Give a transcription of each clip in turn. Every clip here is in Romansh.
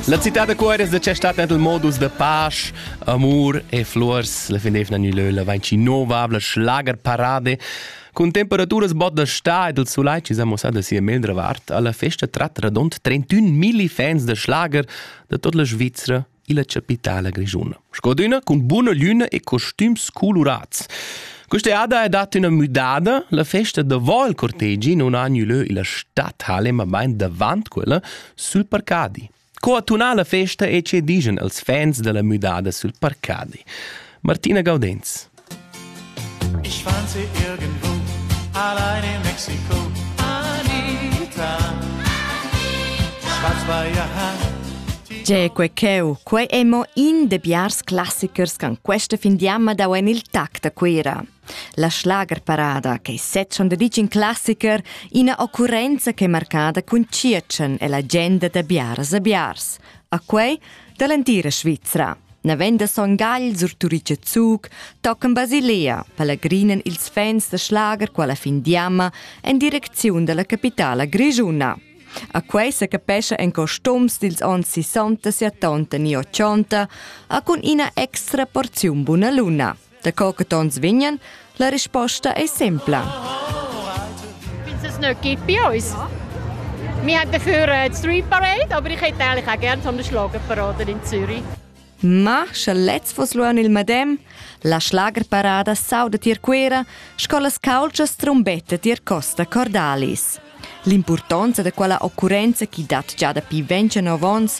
La città da Cuores da c'è stata il modus da pace, amor e flors. La finevna ni leu la vainci novabla schlagerparade Cun temperaturas bot da sta ed il sulai ci sa mossa da sia mendra vart alla festa trat radont 31 milli fans da schlager da tot la Svizzera illa chapitala grischuna. Sco d'üna cun buna lüna e costüms colurats. Questa ada è data üna müdada, la festa davant il cortegi non ha lö illa stadhalle, ma bain davant quella, sul parcadi. Co attunà la festa e ce digen als fans della müdada sul parcadi. Martina Gaudenz. Ich warnte irgendwo, allein in Mexiko, Anita. Schwarz-weißer Haar. C'è quei cheu, quei è mo in de biars classichers che questa fin di amma dau en il tact a Cuira. La schlagerparada, che set schon de in classicher, ina occurrenza che è marcada con Circen e la genda da biars a biars. A quei dall'entira Svizzera. Naven da Son Gagl sur Turice Zuc tocan Basilea, palagrinen ils fans da schlager quella fin d'jamma en direcziun dalla capitala grischuna. A quei se capescha en costums dils onns 60 e 80 e 80, a cun ina extra porziun buna luna. Daco che tons vegnan, la risposta ei sempla. Vinzes nicht gibt bei uns. Wir haben dafür äh, die Street Parade, aber ich hätte eigentlich auch gerne so eine Schlagerparade in Zürich. Ma, sche lez vos luan il madem, la schlagerparada sauda tier Cuera, sco las calcias trombetta tier Costa Cordalis. L'impurtonza da quella occurenza chi dat già dapi 29 ons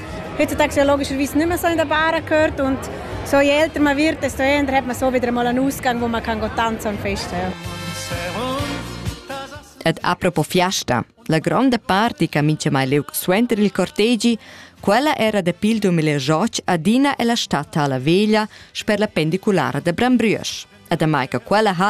Heutzutage ja logischerweise nicht mehr so in der Bar gehört und so je älter man wird, desto eher hat man so wieder mal einen Ausgang, wo man kann tanzen und festen ja. Ed apropos Fiesta, la gronda party che mince mai leu suenter il cortegi, quella era dapi il 2008 adina e la stata alla veglia sper la pendiculara da Brambrüesch. E damai che quella ha